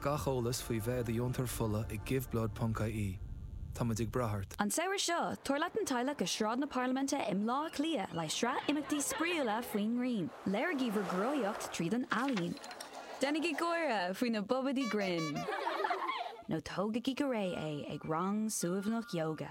Gach eolas faoi bheith i do dheontóir fola ag giveblood.ie. Táimid ag brath ort! An samhradh seo, tabhair leat an teaghlach go Sráid na Parlaiminte i mBaile Átha Cliath le sraith imeachtaí spraíúla faoin ngrian. Léirígí bhur gcruthaíocht tríd an ealaín. Déanaigí gáire faoi na babaidí grinn. Nó tógaigí go réidh é ag rang suaimhneach ióga.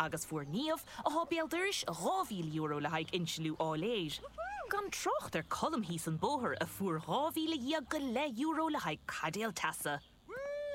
Agus fuair Niamh, atá béal dorais, €2,000 le haghaidh insliú áiléir. Gan trácht ar Colm thíos an bóthar a fuair dhá mhíle dhéag go leith euro le haghaidh caidéal teasa.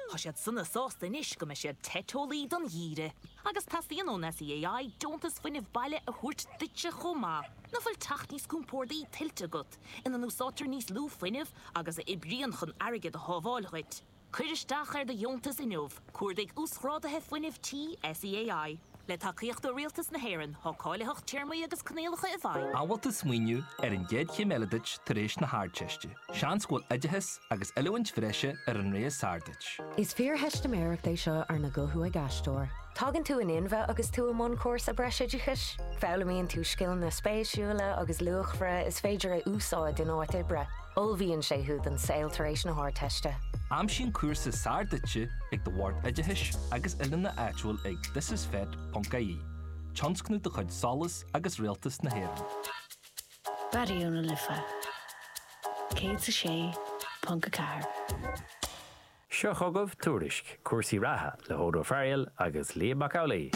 Tá siad sona sásta anois go mbeidh siad te teolaí don gheimhreadh. Agus teastaíonn ón SEAI deontas fuinnimh baile a thabhairt duitse chomh maith. Nach bhfuil teach níos compórdaí tuillte agat, ina n-úsáidtear níos lú fuinnimh agus a oibríonn chun airgead a shábháil dhuit? Cuir isteach ar do dheontas inniu, cuardaigh Uasghráduithe Fuinnimh Tí SEAI. Le tacaíocht ó Rialtas na hÉireann, tá cáilitheacht téarmaí agus coinníollacha i bhfeidhm. An bhfuil tú ag smaoineamh ar an gcéad chéim eile duit tar éis na hArdteiste? Seans go bhfuil oideachas agus oiliúint bhreise ar an rogha is fearr duit. Is fíortheistiméireacht é seo arna guthú ag aisteoir. Tagann tú in inmhe agus tú i mbun cúrsa breisoideachais. Foghlaimíonn tú scileanna spéisiúla agus luachmhara is féidir a úsáid in áit oibre. Ullmhaíonn sé thú don saol tar éis na hArdteiste. Aimsigh an cúrsa is fearr duitse ag do Bhord Oideachais agus Oiliúna áitiúil ag thisisfet.ie, tionscnamh de chuid SOLAS agus Rialtas na hÉireann. Raidió na Life 106.4. Seo chugaibh Tuairisc cúrsaí reatha le hOdhrán Ó Fearghail agus Liam Mac Amhlaoidh.